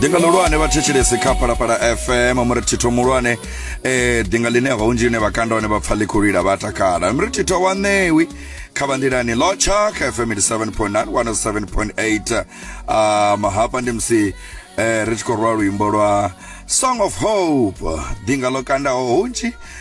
dinga ḽihulwane vha thetshelesi kha phalaphala fm muretitho muhulwane eh dinga ḽine vhaunzhi ine vha kanda hone vha pfa ḽikhulwila vha takala muretitho wa ṋewi kha vha nḓilani lotsha kha fm 87.9 107.8 um hafha ndi musi eh ri tshi khou rwa luimbo lwa song of hope dinga ḽo kandaho hunzhi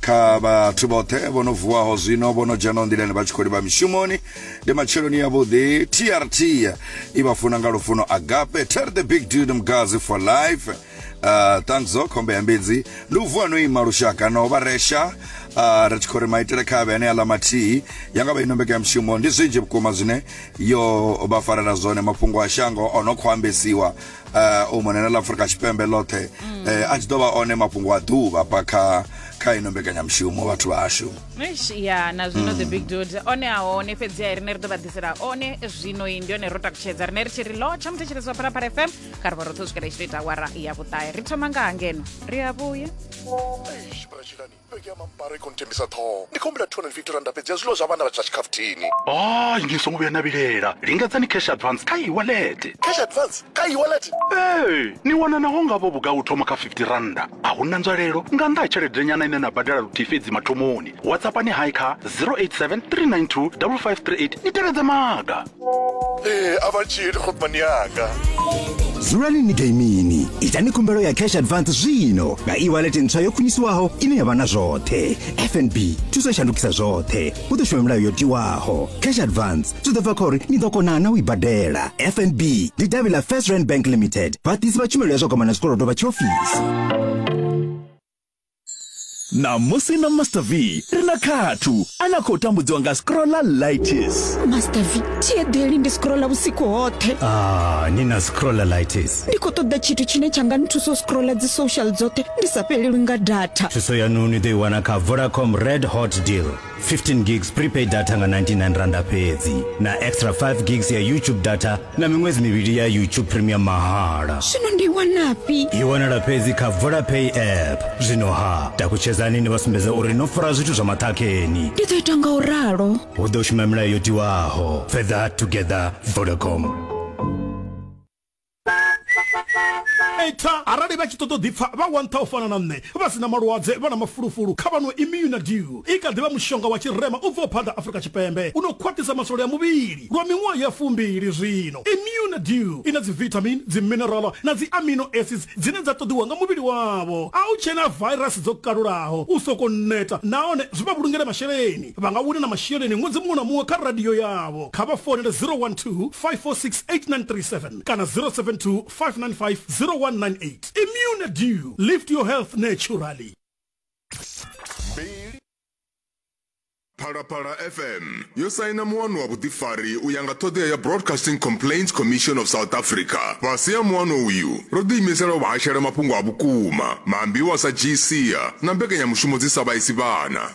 kha vhathu vhoṱhe vho no vuwaho zwino vho no dzhenaho nḓilani vha tshi khou livha mishumoni ndi matsheloni yavhuḓi trt i vha funa nga lufuno agape ter the big dude mgazi for life uh, thanks o khombe ya mbidzi ndi u vuwa no ima lushaka no vha resha uh, ri tshi khou ri maitele kha vhe ane aḽa mathihi ya nga vha ino mbekanya mushumo ndi zwinzhi vhukuma zwine yo vha farela zwone mafhungo a shango o no khou ambesiwa uh, u mona na ḽa afurika tshipembe ḽoṱhe mm. uh, a tshi ḓo vha one mafhungo a ḓuvha pa kha kha ino mbekanyamushumo vhathu vhashu ya na zwino the mm. big dod one a hone fhedzi a rine ri ḓo vha ḓisela one zwino i ndi one ro takutshedza rine ri tshi ri lo tsha muthetshelezi wa phalaphala fm kha ri vha roṱhe u swikela i tshi to ita awara ya vhuṱahe ri thoma nga ha ngeno ri a vhuya Bege mambaro i khou ntembisa ṱhoho ndi khou humbela 250 randa fhedzi ya zwiḽiwa zwa vhana vha tsha tshikhafuthini a ni songo vhuya na vhilela lingedzani cash advance kha iwalete cash advance kha iwalete ee ni wana naho ngavho vhugai u thoma kha 50 randa a hu na nzwalelo nga nnḓa ha tshelede nyana ine na badela luthihi fhedzi mathomoni whatsappani hai kha 087 392 5538 ni tevhedze maga ee a vha tshili khopani yanga dzulani ni gaimini itani khumbelo ya cash advance zwino nga e-wallet ntswa yo khwiniswaho ine ya vha na zwoṱhe fnb thuso shandukisa zwoṱhe hu ḓo shuma milayo yo tiwaho cash advance zwi ḓo bva kha uri ni ḓo kona na u i badela fnb ndi davhi ḽa first rand bank limited vhaḓisi vha tshumelo ya zwa kwamana zwikolodo vha tshiofisi ṋamusi na master v ri na khathu a na khou tambudziwa nga scrolla lightis master v thieḓeli ndi scrolla vhusiku hoṱhe ah, ni na scrolla lightis ndi khou ṱoḓa tshithu tshine tsha nga nthusa u scrolla dzi social dzoṱhe ndi sa fhelelwi nga data thuso yanu ni ḓo i wana kha vodacom red hot deal 15 gigs prepaid data nga 99 randa fhedzi na extra 5 gigs ya youtube data na miṅwedzi mivhili ya youtube premium mahala zwino ndi wanafhi i wanala fhedzi kha vodapay app zwino ha takutshedzani ni vha sumbedza uri no fara zwithu zwa maṱhakheni ndi ḓo ita nga u ralo hu ḓo shuma milayo yo tiwaho further together vodacom eita arali vha tshi ṱoḓa u ḓipfa vha wa nṱha u fana na nṋe vha si na malwadze vha na mafulufulu kha vha no imuna dew i kha ḓi vha mushonga wa tshirema u bvaho phanḓa afurika tshipembe u no khwaṱhisa masole a muvhili lwa miṅwaha ya fumbili zwino imuna dew i na dzivitamin dziminerala na dzi amino acids dzine dza ṱoḓiwa nga muvhili wavho a u tshena virus dzo kalulaho u soko neta nahone zwi vha vhulungele masheleni vha nga wina na masheleni ṅwedzi muṅwe na muṅwe kha radio yavho kha vha founele 012 5468937 kana 072 595 0198 immune dew lift your health naturally phalaphala fm yo saina muwano wa vhuḓifari u ya nga ṱhoḓea ya broadcasting complaints commission of south africa fhasi ha muwano uyu ro ḓiimisela u vhahashela mafhungo a vhukuma maambiwa sa gca na mbekanyamushumo dzi sa vhaisi vhana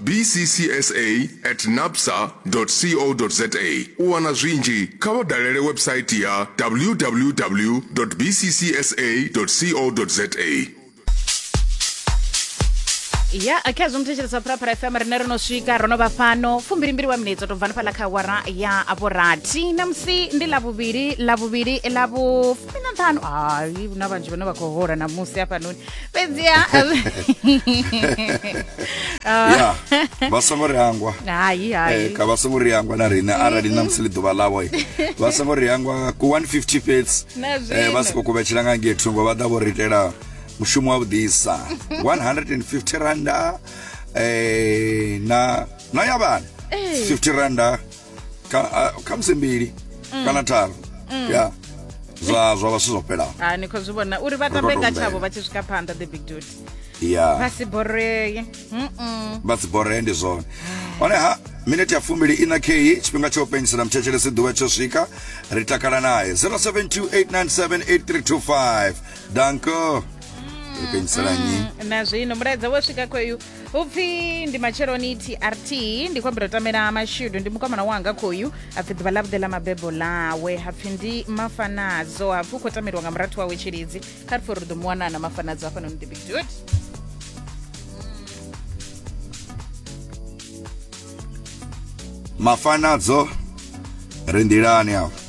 bccsa at napsa co za u wana zwinzhi kha vha dalele website ya www bccsa co za ya kha zwo muthetshelesa phalaphala fm rine ro no swika ro no vha fhano fumbilimbili wa minetse to bva ni fhaḽa kha awara ya vhurathi namusi ndi ḽa vhuvhili ḽa vhuvhili ḽa vhufumi na nṱhanu hai hu na vhanzhi vhane vha khou hola namusi hafhanoni fhedzi ha ya vha songo ri hangwa hai hai eh, ka vha songo ri hangwa na riṋe arali na musi ḽi ḓuvha ḽavho vha songo ri hangwa ku 150 fhedzi eh, vha si khou kuvhetshela nga ngei thungo vha ḓa vho ri itela mushumo wa vhuḓisa 150 randa eh, na na ya vhana 50 eh. randa Kana- a- khamusi mbili Mm. kana tharu Mm. ya zwa zwa vha zwithu zwo fhelaho ha ni khou zwi vhona uri vha Ri tambe khou nga tambela. tshavho vha tshi swika phanḓa the big dude ya vha si boree Mm-mm. vha dzi boree ndi zwone hone ha minete ya fumbili ina kheyi tshifhinga tsha u penyisela muthetshelesi ḓuvha tsho swika ri takala naye 0728978325 danko ri penyisela nyi na zwino mulaedza wo swika khoyu upfi ndi matsheloni trt ndi khou ambira u tamela mashudu ndi mukomana wanga khoyu apfi ḓuvha ḽavhuḓi ḽa mabebo ḽawe hapfi ndi mafanadzo hapfi u khou tameliwa nga murathu wawe tshilidzi kha ri pfhi uri ḓo mu wana na mafanadzo hafhanoni the big dude mafanadzo ri nḓilani afho